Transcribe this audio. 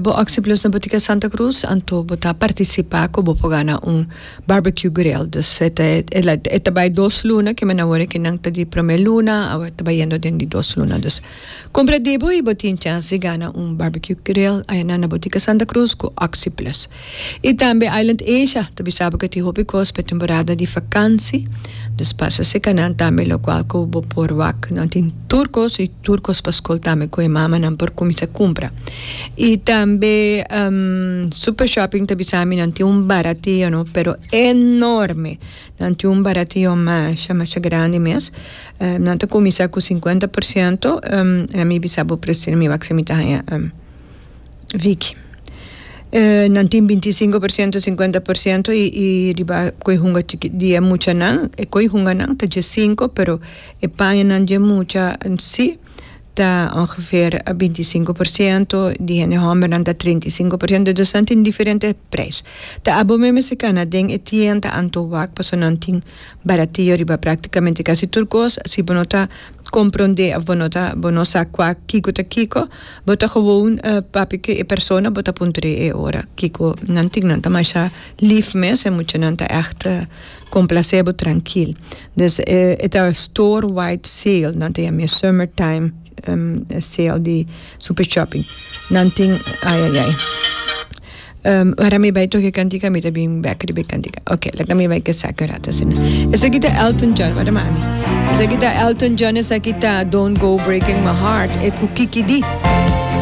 Bo actie plus na Botica Santa Cruz anto bo ta participa cu bo por gana un Barbecue Grill. Dus e ta e ta bay dos luna kimen awor aki nan ta di prome luna awor ta bayendo den di dos luna dus cumpra di bo y bo tin chance di gana un Barbecue Grill ayanan na Botica Santa Cruz cu actie plus. I tambe Island Asia ta bisa bo ke tin hopi kos pa e temporada di vakansi, dus pasa sekanan tambe lokual ku bo por wak. Nan tin tur kos i tur kos pa skol tambe ku e mamanan por kuminsá kumpra. I tambe Super Shopping ta bisa mi nan tin un baratio no pero enorme. Nan tin un baratio masha masha grandi mes. Nan ta kuminsá ku sinkuenta por siento, mi bisa bo presio mi wak si mi ta haña. Vicky. E nan tin binti i sinku persiento, sinkuenta persiento i i riba ku e hunga chikit di e muchanan, e ku e hunganan ta dje sinku pero e pañanan dje mucha si ta ongeveer binti i sinku persiento, di hende hòmbernan ta treinta i sinku persiento, dus nan tin diferente preis. Ta abon me mester kana den e tienda Antowac pasobra nan tin Baratio riba practicamente casi tur cos. Si bo no ta compronde of bo no ta bo no sa cua kico ta kico bo ta gewoon papia cu e persona bo ta puntre e ora kico nan tin. Nan ta masha lief mes e muchanan ta echt complace bo trankil. Dus e ta store wide sale nan ta yama e summer time sale di Super Shopping. Nan tin ayayay. Um, wara mi bai toki cantica, mi ta bin bek riba cantica. Ok, laga mi bai ke saki un rato asina. Esa kita Elton John, wara mami. Esa kita Elton John, esa kita Don't Go Breaking My Heart, e ku Kiki Di.